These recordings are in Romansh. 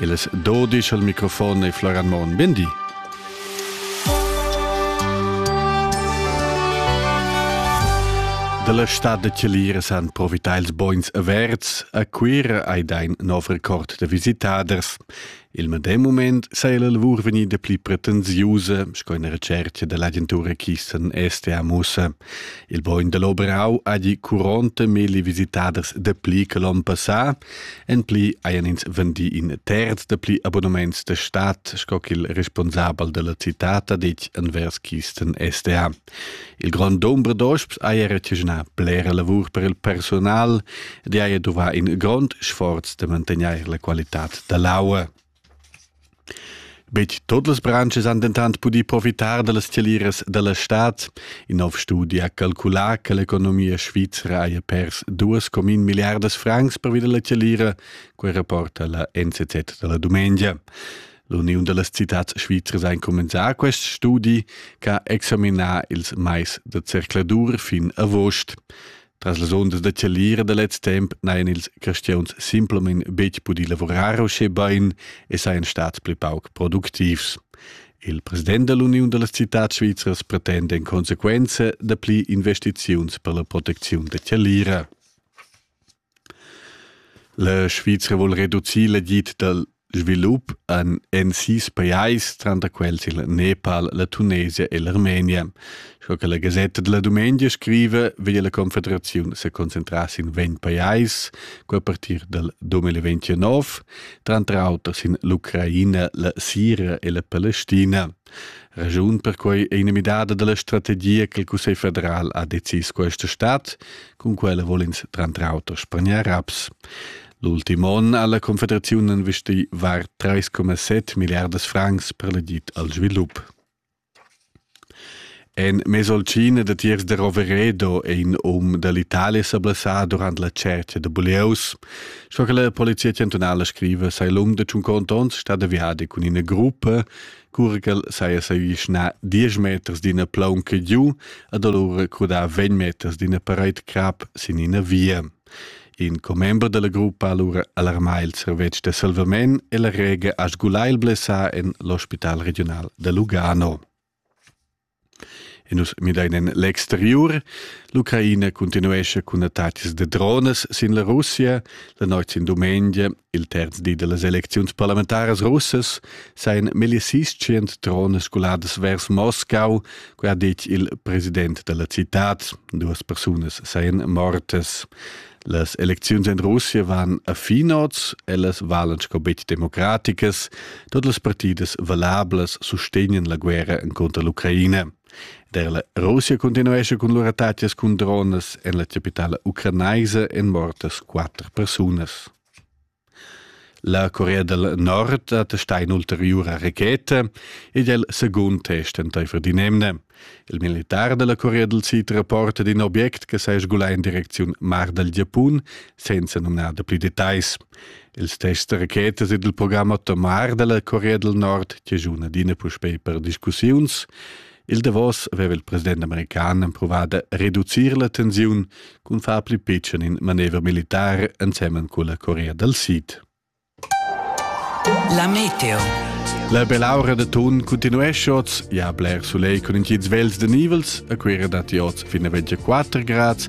Il es dodisch al microfon e Florian Morn. Bindi. Dalla stad da Celira san profitar ils bons averts. A Cuira hai dein nov record da visitaders. Il medem moment sei la lavur vegnida pli pretensiusa, sco in recerca dell'agentura Kissen STA Musa. Il bogn dell'Oberau ha di 40.000 visitaders dapli che l'on passà, En pli hajan ins vendì in terz da pli abonnements da stat, sco ch'il responsabel dalla citad ha detg envers Kisten SDA. Il grond dumber d'osps haja retschenà blera lavur per il personal ed haja duvà in grond sforz da mantegnair la qualitad da l'aua. Betg tut las branschas han dentant pudì profitar da las scaliras da la stad. In nov studi ha calculà che l'economia svizra haja pers duas comin milliardas francs pervi da la scalira, quai rapporta la NZZ da la dumengia. L'uniun da las citads svizras ha incumbensà quest studi che ha examinà ils mais da zercladur fin agost. Tras las ondas da chalira da lez temp n'hajan ils cristians simplamain betg pudì lavurar uschè bain e sajan stads pli pauc productivs. Il president da l'Uniun da las citads svizras pretenda en consequenza dapli investiziuns per la protecziun da chalira. La Svizra vuol reducir l'agid dal svilup en, en sis pajais, tranter quels il Nepal, la Tunesia e l'Armenia. Sco che la Gazetta della Dumengia scrive, veglia la Confederazione se concentrare in ventg pajais a partir dal 2029, tranter auter in l'Ucraina, la Siria e la Palestina. Ragiun per quei è inamidada dalla strategia che il Cussegl federal ha decis questa stat, con quella volens tranter auter spaniar raps. L'ultim onn ha la Confederaziun investì var 3,7 milliardas francs per l'agid al svilup. En Mesolcina datiers da Roveredo è in um da l'Italia sa blessà durant la tschertga da bulieus. Sco che la polizia chantunala scriva, sei l'um da tschun contons stat aviadi cun ina gruppa, cura ch'el saja s'avischnà 10 meters d'ina plaunca giu ed alura crudà 20 meters d'ina paraid crap sin ina via. In commember dalla gruppa ha lura alarmà il servetsch da salvament e la rega ha sgulà il blessà en l'ospital regiunal da Lugano. E nus midain en l'exteriur. L'Ucraina continuesce cun attacks de drones sin la Russia la noit sin dumengia Il terz di dellas elecziuns parlamentaras russas sajan meglio 600 trone scoladas vers Moscau, quai ha detg il president della cittad. Duas persunas sajan mortas. Las elecziuns in Russia van a finoz, ellas valan sco betg democraticas. Tutte le partite valablas sustegnan la guerra contro l'Ucraina. Der la Russia continuescha cun lur attacas cun dronas en la capitala ucranaisa èn mortas quatter persunas. La Corea del Nord attestà in'ulteriura racheta ed è il segund test entaifer di nemne. Il militar della Corea del Sid rapporta di un obiect che sa sgulà in direcziun mar del Giappun, senza nomnare pli detais. Il test da rachetas ed il program atomar dalla Corea del Nord chaschuna adina puspei per discussiuns. Il davos aveva il president american emprovà da reducir la tensiun cun far pli pitschen in manever militar ensemen con la Corea del Sid. La meteo. La belaura da tun continuesce oz, ja bler sulei con in ties vels de nivels, a quera datti oz fin a 24 grads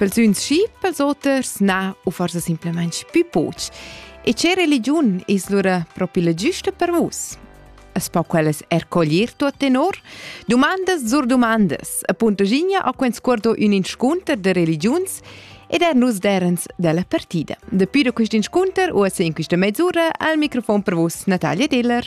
Persüns schi, pels oters na, u forsa simplamaing pü poch. E che religiun es lura propi la giusta per vus? Es po quellas er coglier tuot tenor? Dumandas zur dumandas, appuntaginha a que'n scuardo ün inscunter de religiuns ed er nus derens della partida. Dapi da quest inscunter u a in questa mezz'ura al microfon per vus Natalia Diller.